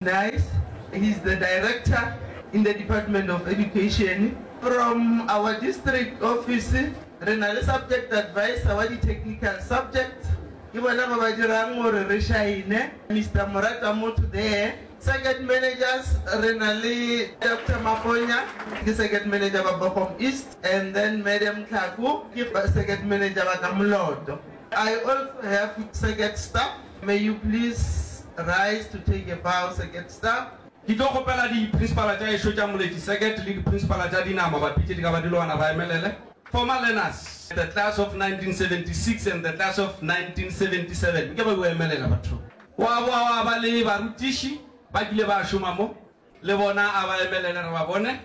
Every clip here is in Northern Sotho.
Nice, he is the director in the department of education. From our district office re na le subject advisor wa di technical subjects, ke bona ba ba dirang gore re šaene, Mister Moratamotho there. Circuit managers re na le Doctor Maponya, ke circuit manager wa Bokgom East, and then Madam Tlhako ke circuit manager wa ka Moloto. I also have circuit staff. May you please rise to take a bow, circuit staff. Ke tlo kgopela di principala tša ešo tša Moleti Circuit le di principala tša dinama ba pitše di ka ba di loana ba emelele former learners, the class of 1976 and the class of 1977. Nke ba yo emelela batho. Gwa boa gwa ba le barutiši ba kile ba šoma mo, le bona a ba emelele re ba bone.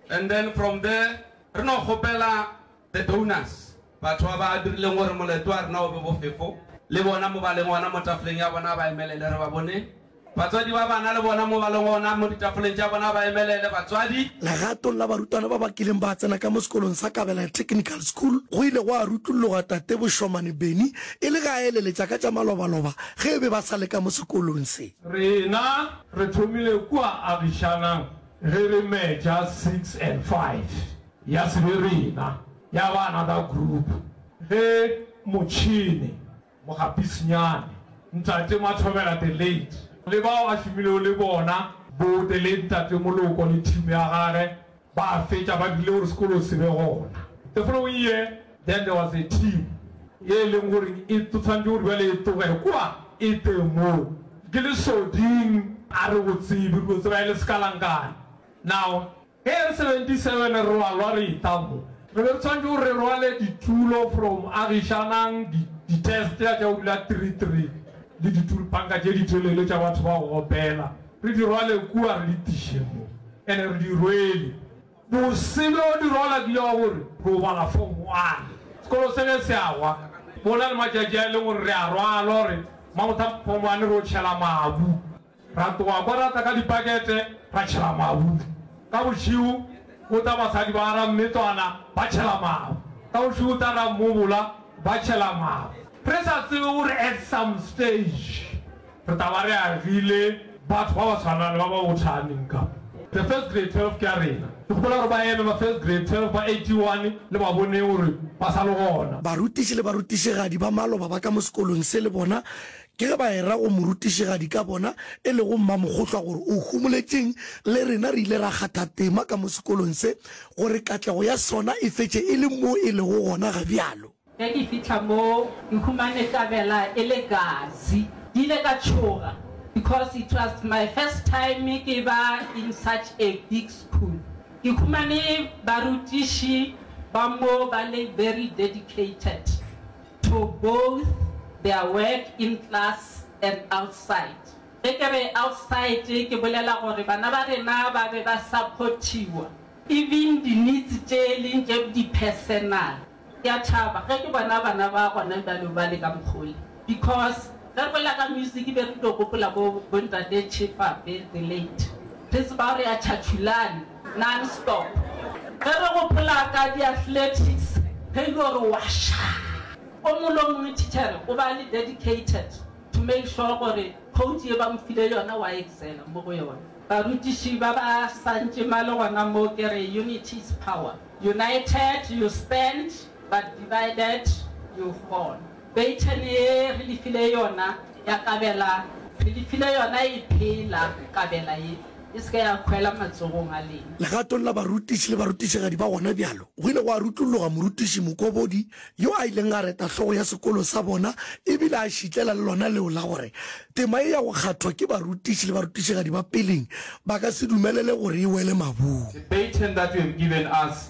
And then from there re no kgopela The Donors, Batho ba ba dirileng gore moletlo wa rena o be bofefo, le bona mobaleng ona mo tafoleng ya bona, ba emelele re ba bone. Batswadi ba bana, le bona mobaleng ona mo ditafoleng tša bona, ba emelele batswadi. Legatong la barutwana ba ba kileng ba tsena ka mo sekolong sa Kabelaya Technical School, go ile gwa rutlulloga Tate Boshomane Benny e le ge a eleletša ka tša malobaloba ge e be ba sa le ka mo sekolong se. Rena re thomile kua agišanang ge re metša six and five. Ya se be rena, ya ba another group. Ge motšhene, mokgapisinyane, Ntate Mathobela the late, le bao a šomilego le bona, bo the late Ntate Moloko le team ya gage, ba fetša ba dirile gore sekolo se be gona. The following year, then there was a team ye e leng gore e tswantšwe gore bjale e tloge kua e tle mo. Ke Lesoding a re go tsebe, re no tseba e le sekalankane. Now, Ge re 77 re wa lwa re itamo. Re be re tshwanetše gore re rwale ditulo from Agishanang, di, di-test ya tša go dula three three le ditulpanka tše di telele tša batho ba go opela, re di rwale kua re di tiše mo. And-e re di rwele. Bose bjo di rwala di ya gore ro bala form one. Sekolo se ge se a wa, go na le matšatši a e leng gore re a rwalwa gore mabothata form one re yo tšhela mabu. Ra tloga kwa ra tla ka dipakete ra tšhela mabu. Ka bošego go tla basadi ba ra Mmetlwana ba tšhela mabu. Ka bošego go tla ra Mmobola ba tšhela mabu. Re sa tsebe gore at some stage re tla ba re agile batho ba ba tshwanang le ba ba go Tshaneng ka. The first grade 12 ke ya rena. Ke gopola gore ba eme ba first grade 12 ba 81 le ba Boneng gore ba sa le gona. Barutiši le barutišigadi ba maloba ba ka mo sekolong se le bona Ke ge ba era go morutišigadi ka bona e lego Mmamokgohlwa gore o humoletšeng, le rena re ile ra kgatha tema ka mo sekolong se gore katlego ya sona e fetše e le mo e lego gona ga bjalo. Ge ke fihla moo ke humane tabela e le kasi. Ke ile ka tšhoga because it was my first time ke ba in such a big school. Ke humane barutiši ba moo ba le very dedicated. to both their work in class and outside. Ge ke re outside ke bolela gore bana ba rena ba be ba support-iwa even di-needs tše e leng tše di-personal. Ke a thaba ge ke bona bana ba gona bjalo ba le ka mokg'o le because ge re bolela ka music be re tlo gopola bo Ntate Cheapape the late, re tseba gore a Chachulani. Non-stop. Ge re gopola ka di-athletics, ge e le gore wa ša, o mongwe le o mongwe tichere o ba a le dedicated to make sure gore quote ye ba mo file yona wa excela mo go yona. Barutiši ba ba sa ntše ma le gona mo ke re, Unity is power. United you stand, but divided you fall. Beitšhene ye re le file yona ya kabela, re le file yona e phela, kabela ye e se ke ya khwela matsogong a lena. Legatong la barutiši le barutišigadi ba gona bjalo, go ile gwa rutlulloga morutiši Mokobodi yo a ileng a reta hlogo ya sekolo sa bona e bile a šitlela le lona leo la gore tema ye ya go kgathwa ke barutiši le barutišigadi ba peleng ba ka se dumelele gore e wele mabung. The baton that you have given us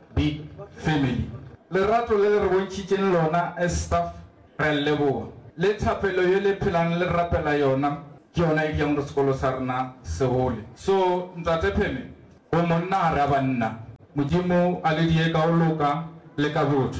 Big family. Lerato le le re bontšhitšeng lona as staff re a leboga, le thapelo ye le phelang le re rapela yona ke yona e dirang gore sekolo sa rena se gole. So Ntate Pheme, bomonna ga re a banna. Modimo a le die ka go loka le ka botho.